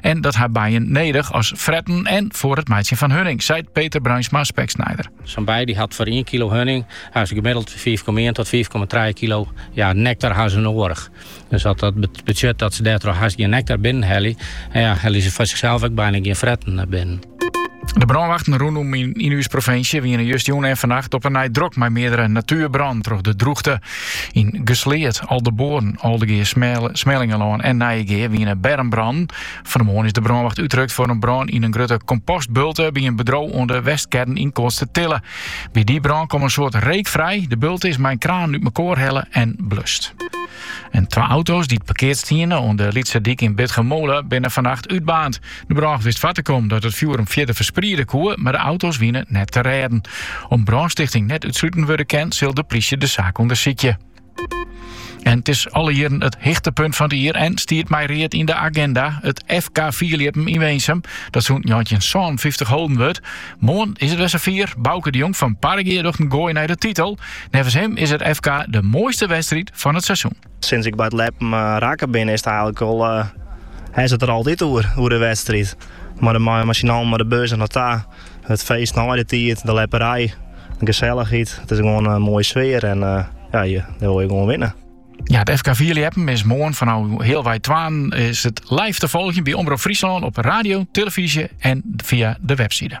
en dat har bijen nedich as fretten en foar it meitsjen fan hunning, seit Peter Bruinsma Speksnijder. Sa'n bije dy't hat foar ien kilo hunning ha se gemiddeld fiif komma ien tot fiif komma trije kilo ja, nektar ha se noadich. Dus dat betsjut dat se dêrtroch hast gjin nektar binnen helje en ja, helje se foar sichsels ek byna gjin fretten binnen. De brânwachten rûnom yn, yn ús provinsje wiene justerjûn en vannacht op 'e nij drok mei meardere natuerbrânen troch de drûchte. Yn Gersleat, Aldeboarn, Aldegea, Smellingelân en Nijegea wiene bermbrannen. Fan de moarn is de brânwacht útrukt foar in brân yn in grutte kompostbulte by in bedriuw oan de Westkern yn Koatstertille. By dy brân kom in soad reek frij. De bulte is mei in kraan út mekoar helle en blust. En twa auto's dy't parkeard stiene oan de Lytse Dyk yn Bitgummole binne vannacht útbaarnd. De brânwacht wist foar te kommen dat it fjoer him fierder ferspriede koe, mar de auto's wiene net te rêden. Om't brânstichting net útsluten wurde kin, sil de plysje de saak ûndersykje. En it is alle jierren it hichtepunt fan it jier en stiet mei read yn de aginda, it FK Fierliepen yn Winsum, dat sûnt njoggentjinsânenfyftich holden wurdt. Moarn is it wer safier, Bauke de Jong fan Parregea docht in goai nei de titel. Neffens him is it FK de moaiste wedstriid fan it seizoen. Sinds ik by it leppen rakke bin, is it eilk al hast it der altyd oer, oer de wedstriid. Mar de mei-inoar mei de bus dernei ta, it feest nei de tiid, de lepperij, de gesellichheid. It is gewoan in moaie sfear en ja, dy wolle je gewoan winne. Ja, it FK Fierljeppen is moarn fanôf healwei twaen is it live te folgjen by Omrop Fryslân op radio, televyzje en fia de website.